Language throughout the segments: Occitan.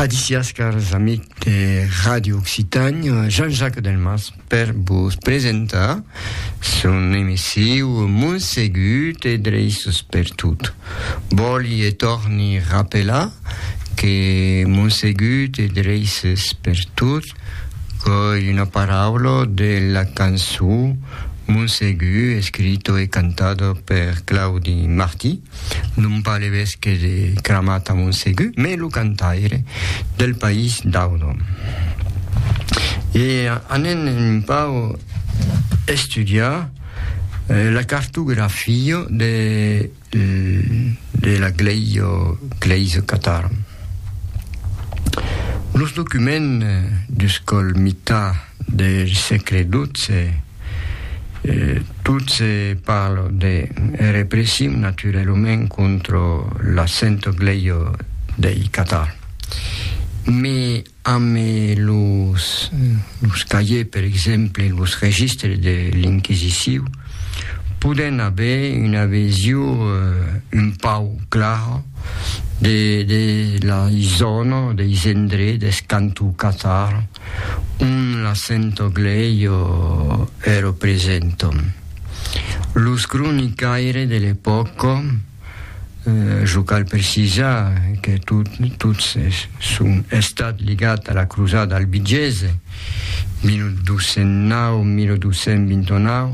Adicias, cars amic de Radio Occitània, Jean-Jacques Delmas per vos presentar son emissiu Montsegut e Dreiços per tot. Vòli e torni rapelar que Montsegut e Dreiços per tot qu'ei una paraula de la cançó Montsegut escrito e cantado per Claudi Martí, non pas le vesque de Cramat a Montsegur, mès lo cantaire del país d'Audon. E anèn un pau estudiar eh, la cartografia de, de la glèisa, glèisa catara. Los documents d'uscòl mitar, del sègle dotze, tot se parla de repression naturalament contra l'assento gleio dei Catar. Me amb los los cahiers per exemple los registres de l'inquisiciu podèm aver una vesio un pauc clara de de lei zòna, deis endrets, deth canton Catar, un l'accento gleio e ro presento. Los cronicaires de l'epòca, jo cal precisar que tots son estats ligats a la crosada albigesa, 1209-1229,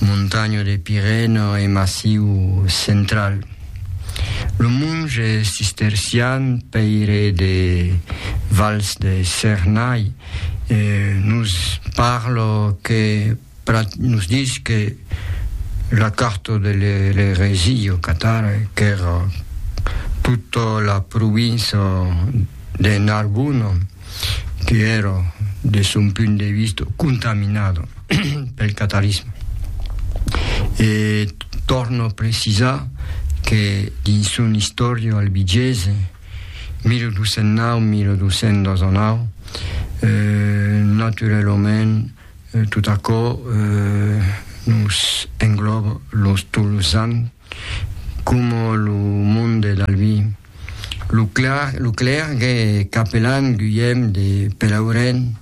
montanha de Pirène e massiu central. Lo monge cistercian Pèire de Vals de Cernay nos parla que nos dis que la carta de l'eresia au Qatar qu'èra tota la provinça de Narbona, que èra de son punt de vista contaminada pel catarisme. E tòrna precisar que dins son istòria albigesa 1209-1219 eh, naturalament tot aquò eh, nos engloba los tolosans. Coma lo monde de l'Albi. Lo clar, lo clergue e capelan Guilhem de Pelauren,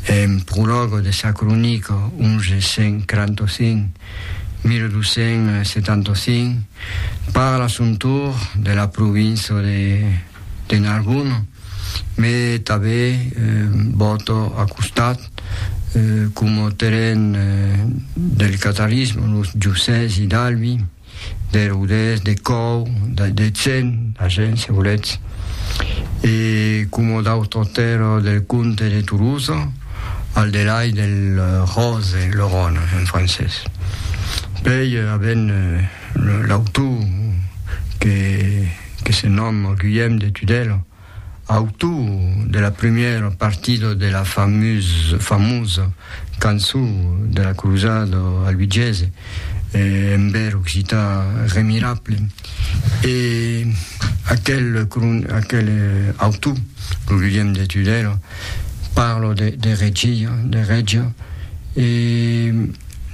en prologo de sa cronica 1145, 1275, parla a son tour de la provinça de. de Nargún, me tabé bòto a costat como terren del catalisme, los Jussès i d'Albi, de Rodés, de Còu, de Cen, d'Agen, se voletz, e como d'autres terres del comte de Toulouse, al delai del Rose, le Rhone en francés. Pèi, avent L'autor que se nòma Guillaume de Tudela, autor de la primièra partida de la famosa cançon de la crosada albigiese en bèr occità remirable, e aquel autor, lo Guillaume de Tudela, parla de regia, e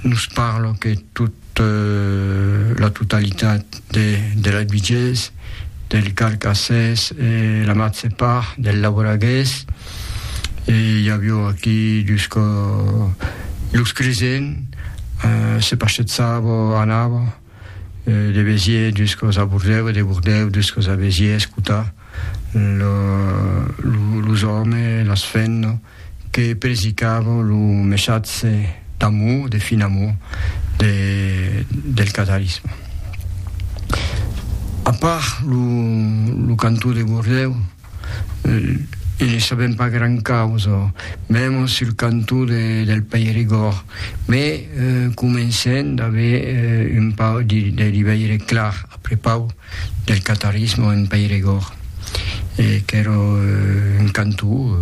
nos parla que tot de la totalitat de la Duiges, del Carcassès e la matge part del Lauragués, e i avió aquí jusqu'o los Cresen, se paschetsavo, anavo de Béziers jusqu'os a Bordèu e de Bordèu jusqu'os a Béziers, escotar los òmes, las fenno. que predicavan lo messatge d'amor, de fin amor, de, del catarisme. A part lo, lo cantó de Gordèu, eh, e ne sabem pas gran causa, mèm sul cantó de, del Peirigòrd, me eh, comencen d'aver eh, un pau de, de liveire clar, après pau, del catarisme en Peiregòrd, qu'èra un cantó,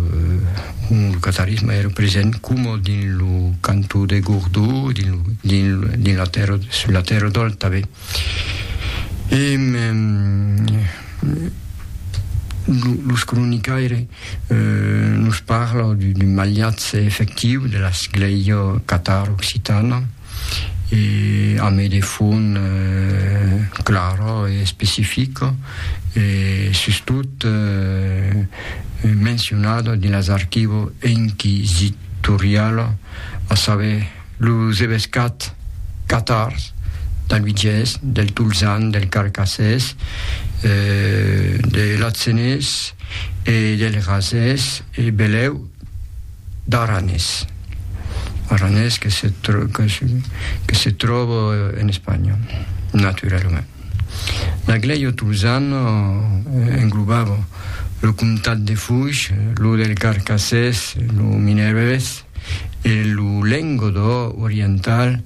ont lo catarisme èra present coma dins lo cantó de Gordó, dins la tèrra, sus la tèrra d'Òlt tanben. E los cronicaires nos parlan d'un maliatge efectiu de la sclèia catar-occitana, e a mai de fond clara e especifica e sustot mencionada dins las archivo inquisitoriala, a saber, los evescats catars d'Albigés, del Tolzan, del Carcassés, de l'Atzenés e del Razés e belèu. D'Aranés. Aranés que se que se tròba en Espanha, naturalament. L'Aglèio Tolzan englobava lo comtat de Foix, lo del Carcassés, lo Mineirés e lo Lengodò oriental,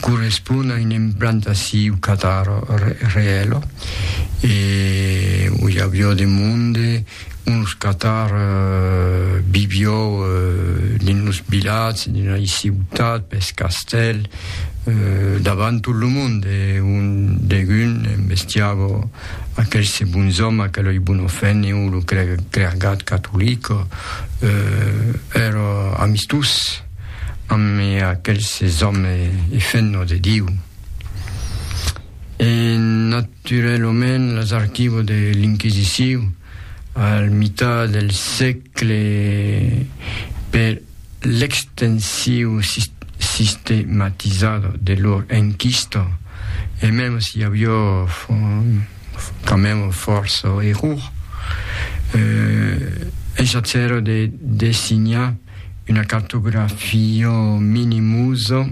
correspond a un implantasiu catar reèla e oi aviò de monde uns catar vivió dins los vilatges dins la ciutat pes castèl davant tot lo monde un degun embestiava aquel se bonzòm aquel oi bon ofèniu lo cregat catolic èra amistós ame aquelses òme e fenno de Diu. E naturelomènt las archivo de l'Inquisiciu al mitat del sègle per l'extensiu sistematizado de lor enquista e mèm si avió quand mème fòrça error, eh, es a cèrre de designar, una cartografia minimusa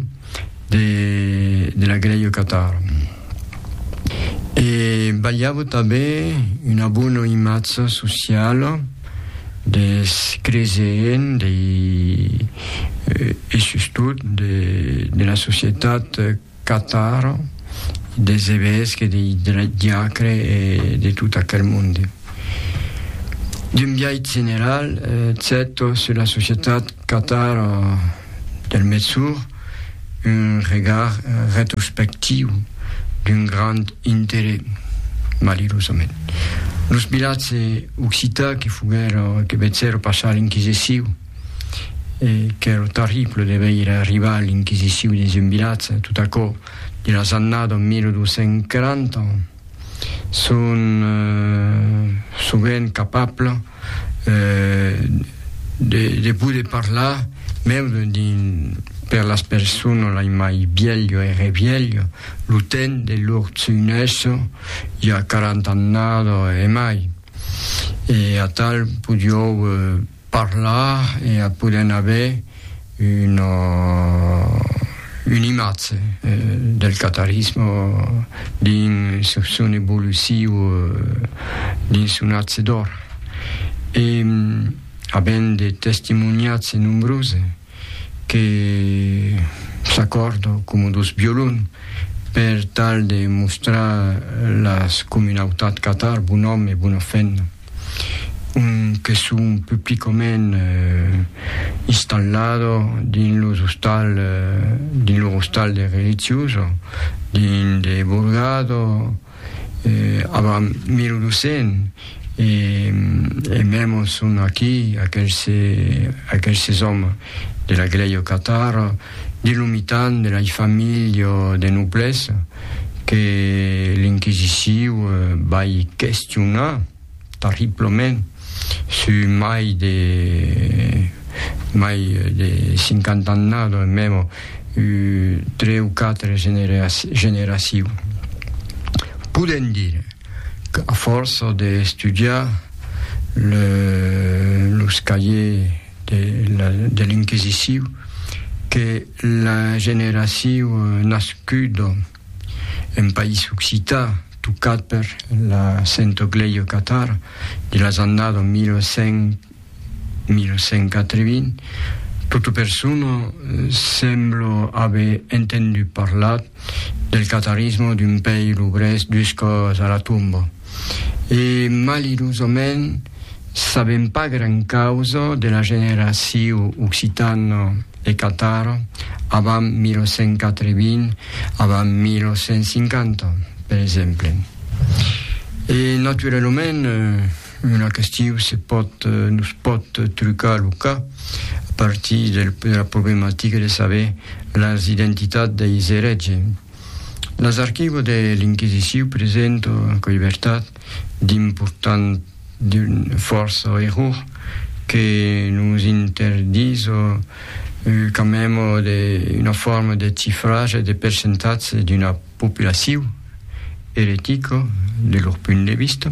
de la Greio Catar. E balhava tanben una bona imatja sociala des creseents dei e sustot de la societat Catar, des evesques, dei diacre e de tot aquel monde. D'un biais general, cèto sus la societat catar del Metsur, un regard retrospectiu d'un grand interès, malirosament. Los vilatges occitans que foguèron, que vecèron passar l'inquisiciu, e qu'ère terrible de veire arribar l'inquisiciu dins un vilatge, tot aquò de las annadas 1240, son sovent capable de poder parlar mèu per las personas lai mai vièlho e revièlho, lo temps de lor tsuinèssa i a 40 annadas e mai, e atal podiou Parlar e a poder n'aver una una imatge del catarisme dins son evoluciu dins son atge d'or e avent de testimoniatge nombrose que s'acòrda coma dos violon per tal de mostrar las comunautat catar bon òme e bona femna. un que son publicament installado dins los ostal dins lo ostal de religioso dins de Borgado avant 1200 e e memo son aquí aquelse aquelse òme de la glèia Catar De lo mitan de lei familh de noblès que l'inquisiciu vai questionar terriblament su mai de mai de cinquanta annada o memo u tre u quatre generaciu. Podem dire qu'a fòrça de estudiar los cahiers de, la, de l'inquisiciu que la generaciu nascudo en país occità tocat per la Sento Gleio Catar de las annado 1100 1180 tota persona semblo aver entendu parlar del catarismo d'un pèir obrés duscos a la tomba. e malirosament sabèm pas gran causa de la generaciu occitano e catar avant 1980, avant 1950, per exemple. E naturalament una questiu se pòt, nos pòt trucar lo cap a partir de la problematica de saber las identitats deis erètges. Las archivo de l'Inquisiciu presento en coibertat d'important d'un fòrça error que nos interdiso qu'amemo de una forma de cifratge de percentatge d'una populaciu eretica de lor punt de vista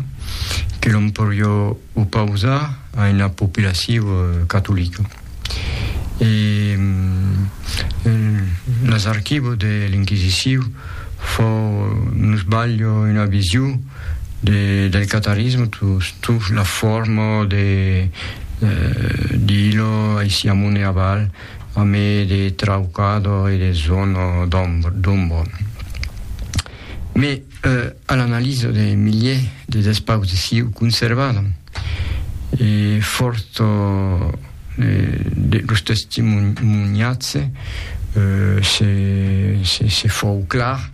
que l'on porió Opausar a una populacion catolica. E las archivos de l'Inquisicion fau nos balho una vision del catarisme sus la forma de d'ilo aici amont e aval a mai de traucador e de zona d'ombra. Mès a l'analisa de miliers de despaus de siu conservada, e fòrt de los testimonhats, se fòu clar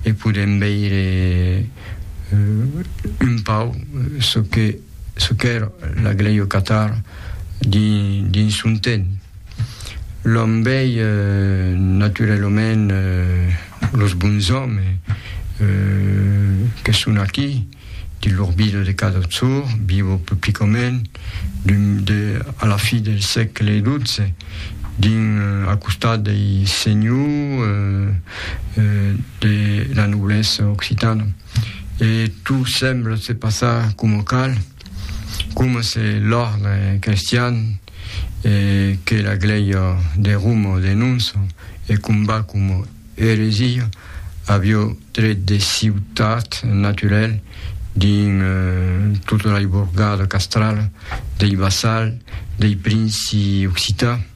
e podèm veire un pauc çò qu'èra la glèu Catar dins son temps. L'òme vei naturalament los bons òmes que son aquí, dins lor vida de cada jorn, vivo publicament, a la fi del sègle xii, dins al costat dei senhors de la noblesa occitana. E tot sembla se passar coma cal. Coma se l'òrdre crestian e que la glèia de Roma denonça e combat coma eresia, avió tret de ciutat naturèl dins tota la iborgada castrala dei vassals dei princi occitans.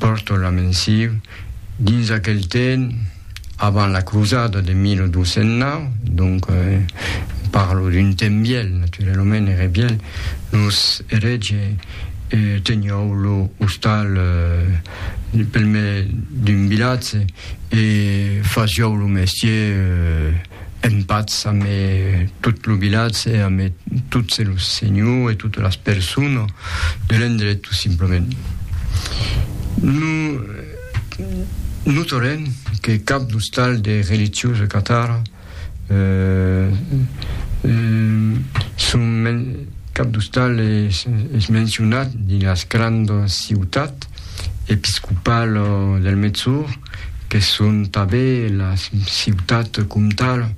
pòrton la mensiu dins aquel temps avant la crosada de 1209, donc parlo d'un temps vièlh, naturalament ère vièlh, los erètge teniou lo ostal pel mai d'un vilatge e fasiou lo mestier En patz amé tot lo vilatge e amé tots los senhors e totes las personas de l'endret tot simplament. No notarem que cap d'ostal de religiosa catara cap d'ostal es mencionat dins las grandas ciutats episcopala del Mètz-Or, que son tanben las ciutats comtal,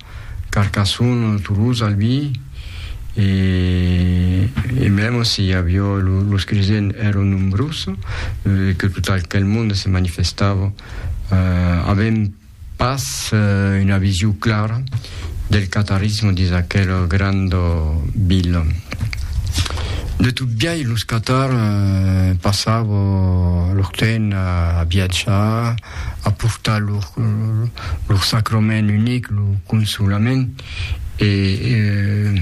Carcassonne, Toulouse, Albi, e e mèm si aviá los cresents èran nombrós, que tot aquel monde se manifestava, avèm pas una vision clara del catarismo dins aquel grand vila. De tot biais los catar passava lor temps a viatjar, a portar lor, lor sacrament unic, lo consolament, e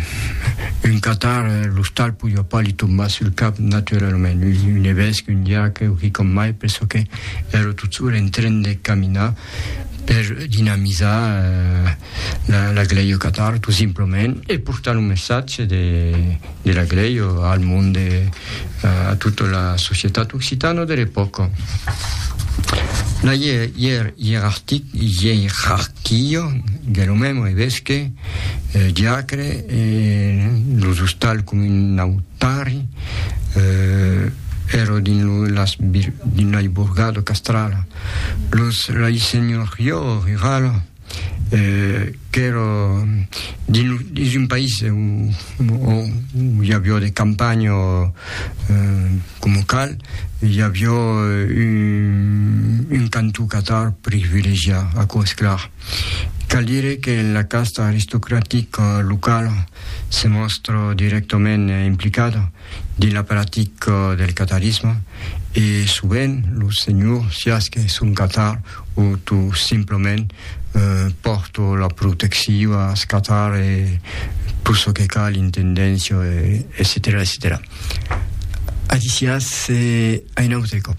un catar l'ostal podiá pas li tombar sul cap naturalament, un evesque, un diaque o quicòm mai, perçò que èra tot sol en tren de caminar, per dinamizar la glèi au Qatar, tot simplement, e portar lo messatge de la glèi al mond, a tota la societat occitana de l'epòca. La ierarquia de lo mèm evesque, diacre, e los ostals comunautari èra dins la iburgada castrala. Los Rai Senhor Yo Riral, qu'èra dins un país o i avió de campanha coma cal, i avió un cantó catar privilegiat, aquò es clar. Cal dire que la casta aristocratica locala se mòstra dirèctament implicada, dins la practica del catarisme e sovent lo senhor siás qu'es un catar o tot simplament pòrto la protectiva as catar e tot çò que cal intendéncia etcetèra etcetèra aquí siás a un autre còp.